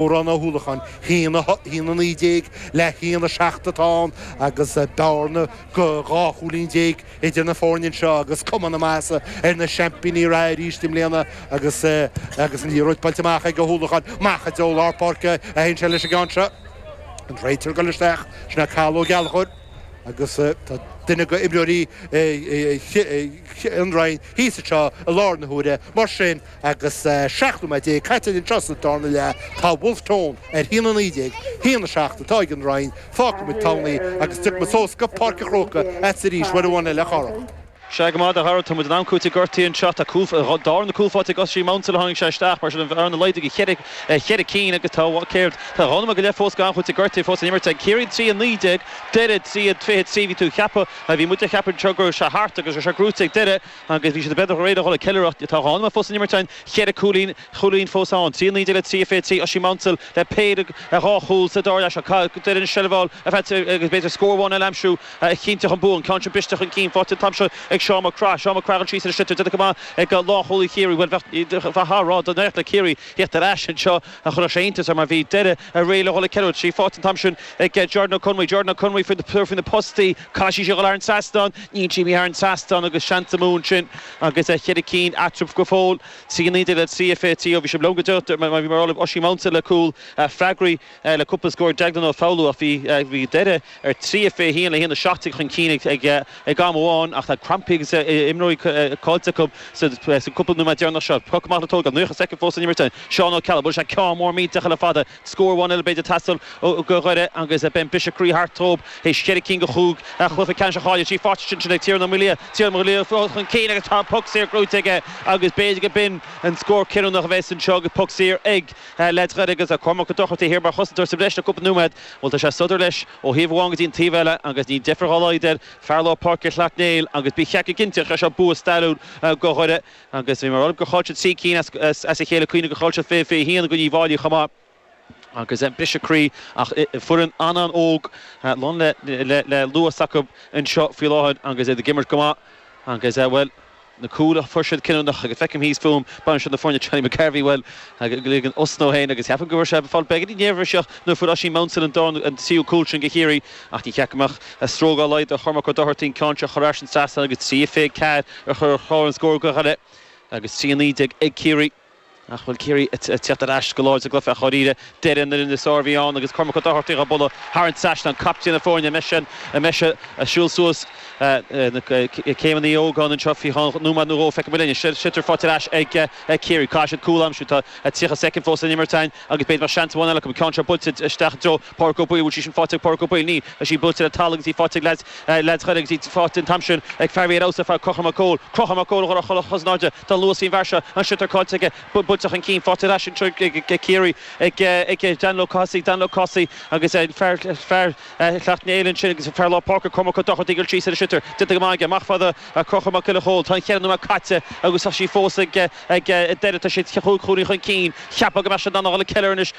Odhrán Ó hUallacháin, haon a hocht, haon a naoi déag le haon a seacht atá ann agus bearna go dhá chúilín déag idir na foirne anseo agus cuma na maitheasa ar na seaimpíní reatha arís i mbliana agus agus an liathróid buailte amach ag Ó hUallacháin. Amach i dtreo lár páirce a théann sé leis an gceann seo and an réiteoir a ghoil isteach. Sin é Cathal Ó Gallchóir agus tá duine go imreoirí An Rinn thíos anseo i láthair na huaire mar sin. Agus 17 nóiméad caite anseo sa darna leath tá Bhulf Tón ar haon a naoi déag, haon a seacht atá ag An Rinn, fágfaidh muid Tamhnaigh agus tiocfaidh muid suas go Páirc an Chrócaigh arís uair amháin eile a Chárthaigh. Sea go maith, a Dhara, tá muid in am cúitimh gortaithe anseo. Tá darna cúl faighte ag Oisín Maunsell ó tháinig sé isteach, mar sin an bhearna laghdaithe go ceithre cinn agus tá, bhuel, céard, tá dhá nóiméad go leith fós go am cúitimh gortaithe fós le n-imirt ag Ciarraí. Trí a naoi déag, Doire, trí a fiche trí, bhí tú a cheapadh, bhí muid a cheapadh anseo go raibh sé thart agus raibh sé gnóite ag Doire. agus bhí siad beagnach réidh a dhul ag ceiliúradh. Tá dhá nóiméad fós san imirt ann cheithre cúilín chúilín fós ann. 3 19 le 3 23 Oisín Maunsell le péire a dhá chúl sa dara leath seo caithfidh Doire an tseilbh a fháil a bheith agus b'fhéidir scór amháin eile aimsiú a chinnteodh an bua, an ceann sin briste chun cinn. Faighte an t-am seo ag Seán Mac Craith. Seán Mac Craith, ag dul tríd leis an sliotar déanta go maith ag lánchúlaí Chiarraí. Bhuel bheadh a rá dá n-éireodh le Ciarraí theacht ar ais anseo. a chuirfeadh sé iontas orm mar bhí Doire réidh le dhul ag ceiliúradh faighte an t-am sin ag Jordan Ó Conmhuí. Jordan Ó Conmhuí faoi na postaí, caithfidh sé a dhul thar an trasnán, níl sé thar an trasnán agus seans amú ansin agus ceithre cinn eatarthu go fóill. 3:19 le 3:23, bhí sé lom go deo mar bhí, mar a tharla, Oisín Maunsell le cúl freagraí le cúpla scór. Déaglán Ó Foghlú ach bhí Doire. ar 3-21 le 1-17 chun cinn ag am amháin ach tá crampaí agus imreoirí caillte acu sa gcúpla nóiméad deireanach seo. Poc amach le tógáil, an naocha soicind fós san imirt ag Seán Ó Ceallaigh. Bhuail sé ceann mór millteach eile fada. Scór amháin eile b'fhéidir ag teastáil ó Dhoire agus beidh an briseadh croí thart dóibh théis cheithre cinn de chúig chluiche ceannais a chailleadh trí pháirtí sin, sin ag Tiernan Ó Maolaodha. Tiernan Ó Maolaodha fós chun cinn agus tá an poc saor gnóite aige agus b'fhéidir go b'in an scór cinniúnach a bheas anseo agus poc saor ag leaids Dhoire agus Cormac Ó Dochartaigh thiar mar chosantóir sa bhreis le cúpla nóiméad. Bhuel, tá sé ag sodar leis ó thaobh amháin go dtí an taobh eile agus níl deifir dhá laghad air fear lár páirce Shleacht Néill agus bí cheapfá cinnte gur seo bua stairiúil go Dhoire agus bhí mé ag rá libh gur chaill siad trí cinn as a chéile cuimhnigh gur chaill siad 2021 i gcoinne Uíbh Fháilí chomh maith agus briseadh croí ach foireann an-an óg lán le luas acu anseo faoi láthair agus iad ag imirt go maith agus bhuel. na cúil a fuair siad cinniúnach agus feicim thíos fúm bainisteoir na foirne Johnny McGarvey, bhuel, ag ligean osna ansin agus ceapaim go raibh sé ag fáil beagainín néirbhíseach nuair fuair Oisín Maunsell an dara nó an tríú cúl sin go Chiarraí ach ní cheapfainn go mbeadh stró dá laghad ar Chormac Ó Dochartaigh an ceann seo a chur thar an trasnán agus 3:24 ar chlár an scóir go Dhoire agus 3:19 ag Ciarraí. Ach bhuel, Ciarraí ag tíocht ar ais go láidir sa gcluiche, dháiríre, Doire an fhoireann is fearr a bhí ann agus Cormac Ó Dochartaigh á bualadh thar an trasnán, captaen na foirne, anois an mbeidh sé a' siúl suas na céimeanna Uí Ógáin anseo faoi cheann nóiméad nó dhó, feicfimid linn. Sliotar faighte ar ais ag Ciarraí, caithfidh siad cúl a aimsiú, tá 30 soicind fós le n-imirt a'inn agus b'fhéidir go mbeadh seans amháin eile acu, an ceann seo buailte isteach i dtreo Pádraig Ó Baoill, bhfuil sí sin fáighte ag Pádraig Ó Baoill? Níl, tá sí buailte le talamh agus í fáighte ag leaids, leaids Dhoire agus í fáighte an t-am sin ag fear a bhí ar fheabhas ar fad, Conchúr Mac Cóil, Conchúr Mac Cóil a chuir a chosa in airde, tá an-luas faoin bhfear seo, an sliotar caillte aige, buailte chun cinn, fáighte ar ais anseo ag Ciarraí ag, ag Daniel Ó Cathasaigh, Daniel Ó Cathasaigh agus an fear, fear Shleacht Néill ansin agus fear lár páirce Cormac Ó Dochartaigh ar cleats ar an sliotar, déanta go maith aige, amach fáighte ag Conchúr Mac Giolla Chóill, tá an cheithre nóiméad caite agus tá sí fós ag, ag Doire, tá siad chúig chúilín chun cinn, cheapfá go mbeadh siad in ann a dhul ag ceiliúradh anois.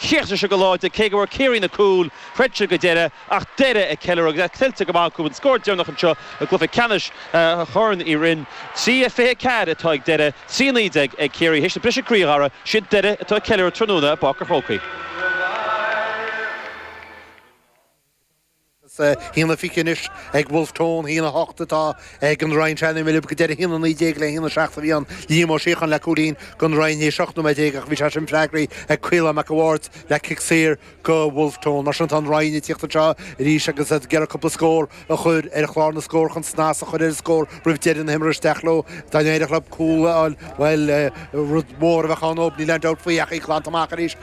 Chríochnaigh siad go láidir, cé go bhfuair Ciarraí na cúil, throid siad go deireadh ach Doire ag ceiliúradh agus é tuillte go maith acu an scór deireanach anseo i gcluiche ceannais Chorn Uí Rinn. 3:24 atá ag Doire, 3:19 ag Ciarraí théis na briseadh croí cheana, siad Doire atá ag ceiliúradh tráthnóna i bPáirc an Chrócaigh. Is haon a fiche anois ag Wolfe Tone, haon a hocht atá ag an Rinn. San am a bhí mé lib go deireadh, haon a naoi déag le haon a seacht a bhí ann. Liam Ó Síocháin le cúilín don Rinn théis ocht nóiméad déag ach bhí sé sin freagraithe ag Caolán Mac a' Bhaird le cic saor do Wolfe Tone. Mar sin tá an Rinn ag tíocht anseo arís agus iad ag iarraidh cúpla scór a chur ar chlár na scór chun snas a chur ar an scór roimh deireadh na himeartha. Isteach leo. Dá n-éireodh leo cúl a fháil, bhuel, rud mór a bheadh ann. Níl aon dabht faoi ach í glanta amach arís.